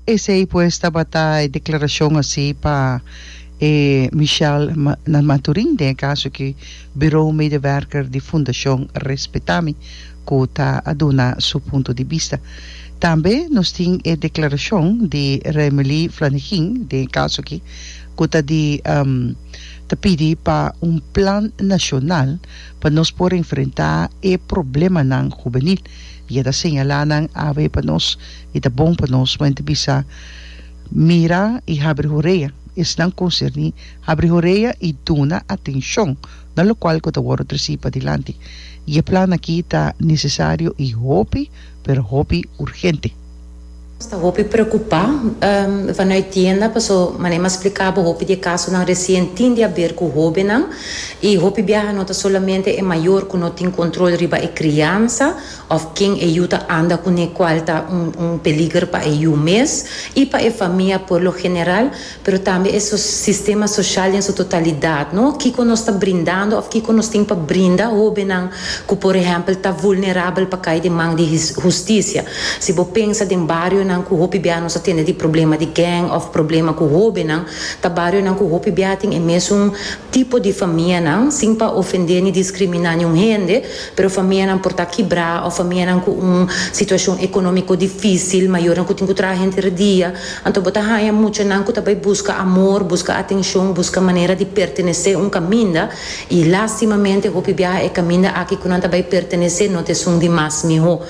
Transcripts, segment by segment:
Esei pues tabata e declaracion haci pa e Michelle Maturin den e caso cu Bureau Medewerker di Fundacion Respetami cu ta a duna su punto di bista. Tambe nos tin e declaracion di Raimelie Flanegin den e caso aki cu ta di ta pidi pa un plan nacional pa nos por enfrenta e problemanan hubenil y e ta señala nan awe pa nos I ta bon pa nos pa henter bisa, Mira i habri horea. Esnan konserní habri horea i duna atenshon na lokual ku ta wòrdu tresí padilanti. I e plan akí ta nesesario i hopi, pero hopi urgente. Nos ta hopi preokupá vanai tienda paso mané m'a spliká bo hopi di e kasonan resien tin di aber ku hóbennan. I hopi biaha no ta solamente e mayor ku no tin kontrol riba e kriansa òf ken e yu ta anda kuné kual ta un un peliger pa e yu mes i pa e famia por lo general, pero tambe e so sistema soshal den su totalidat, no? Kiko nos ta brindando òf kiko nos tin pa brinda hóbennan ku por ehèmpel ta vulnerabel pa kai den man di his hustisia? Si bo pensa den barionan ku hopi bia nos a tende di problema di gèng òf problema ku hóbennan, ta barionan ku hopi bia tin e mesun tipo di famianan, sin pa ofendé ni diskriminá niun hende, Pero famianan por ta kibrá òf famianan ku un situashon ekonómiko difísil, mayornan ku tin ku traha henter e dia, anto bo ta haña mucha nan ku ta bai buska amor, buska atenshon, buska manera di pertenesé un kaminda, i lástimamente hopi biaha e kaminda aki ku nan ta bai pertenesé no ta esun di mas mihó.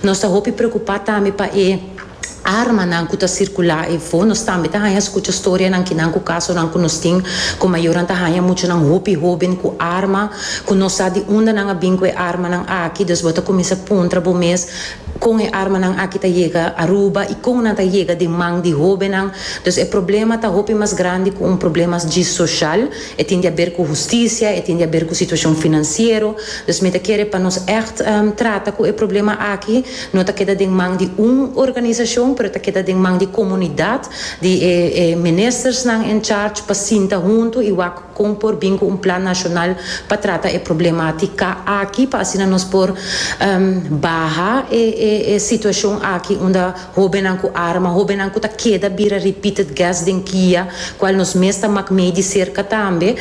Nos ta hopi preokupá tambe pa e. armanan ku ta sirkulá efo. Nos tambe ta haña skucha storianan kinan ku kasonan ku nos tin ku mayornan ta haña muchanan hopi hóben ku arma ku no sa di unda nan a bin ku e armanan aki. Dus bo ta kuminsá puntra bo mes, Kon e armanan aki ta yega Aruba i kon nan ta yega den man di hóbennan? Dus e problema ta hopi mas grandi ku un problema dji soshal. E tin di aber ku hustisia, e tin di aber ku situashon finansiero. Dus mi ta kere pa nos ègt trata ku e problema aki. no ta keda den man di un organisashon pero ta keda den man di komunidat di e e ministersnan en charge pa sinta huntu i wak kon por bin ku un plan nashonal pa trata e problematika aki pa asina nos por baha e e e situashon aki unda hobennan ku arma hobennan ku ta keda bira repeated guest den kia kual nos mes ta mak mei di serka tambe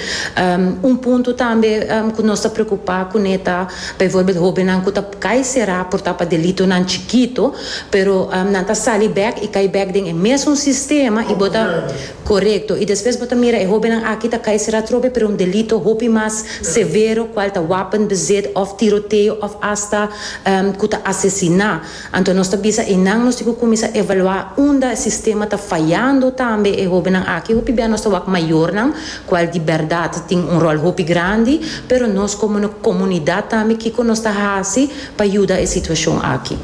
un punto tambe ku nos ta preokupa kuné ta baivorbel hobennan ku ta. Cai será por ta pa delitonan chikito, pero nan ta sali bek i cai bek den e mesun sistema i bo ta corecto i despues bo ta mira e hobennan aki ta cai será trobe pero un delito hopi mas severo cual ta wapenbezit of tiroteo of hasta cu ta asesina. Anto nos ta bisa e nan nos tin cu cuminsa evalua unda sistema ta fayando tambe e hobennan aki hopi bia nos ta wak mayornan cual di berdad tin un rol hopi grandi, pero nos como comunidad tambe kico nos ta haci pa yuda e situacion aki.